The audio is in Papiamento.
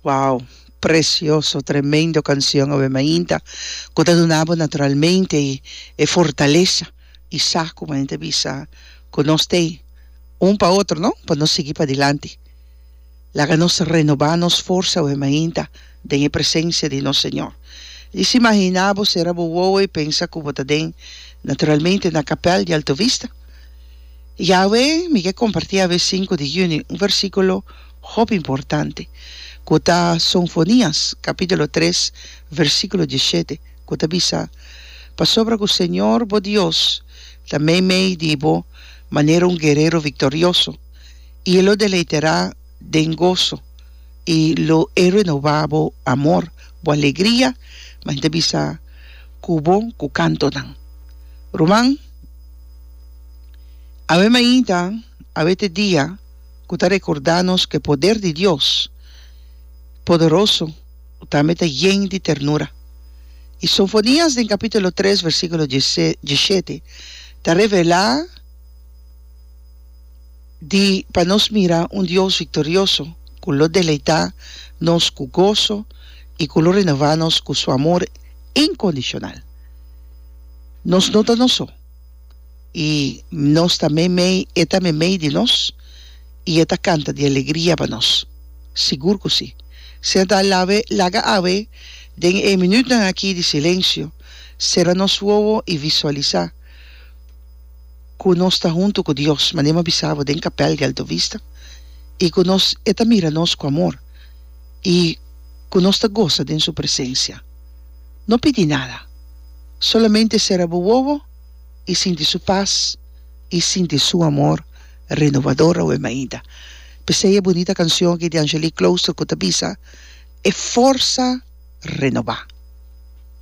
Wow! Precioso, tremendo cancion awe mainta cu ta duna bo naturalmente e fortalesa y sa cu main ta bisa cu nos t'ey un pa otro no pa nos sigui padilanti. Laga nos renoba nos forsa awe mainta den e presencia di nos Señor. Di si mahina bo cera bo wowo y pensa cu bo ta den naturalmente na capel di Alto Vista. Y awe mi ke comparti awe sinku di juni un versiculo, Hopi importante, ku ta Sonfonias kapítulo tres versíkulo dieshete, ku ta bisa, Pasobra ku Señor bo Dios ta meimei di bo manera un guerero viktorioso, i e lo deleiterá den goso, i lo e renobá bo amor, bo alegria, mas i ta bisa ku bo ku kantonan. Ruman, awe mainta, awe te dia. ku ta rekordá nos ku e poder di Dios poderoso tambe ta yen di ternura. I Sofonias den kapítulo tres versíkulo diesshete ta revelá di pa nos mira un Dios viktorioso ku lo deleitá nos ku goso i ku lo renová nos ku su amor inkondishonal. Nos no ta nos so. i nos ta meimei e ta meimei di nos i e ta kanta di alegria pa nos sigur ku si seta lawe laga awe den e minütnan aki di silensio sera nos wowo i visualisá ku nos ta huntu ku Dios manera mi a bisa bo den kapèl di Alto Vista i ku nos e ta mira nos ku amor i ku nos ta gosa den su presensia. No pidi nada. Solamente sera bo wowo i sinti su pas i sinti su amor renovador awor mainta. P'esei e bunita canción aki di Angelique Cloustre cu ta bisa, E forsa renobá.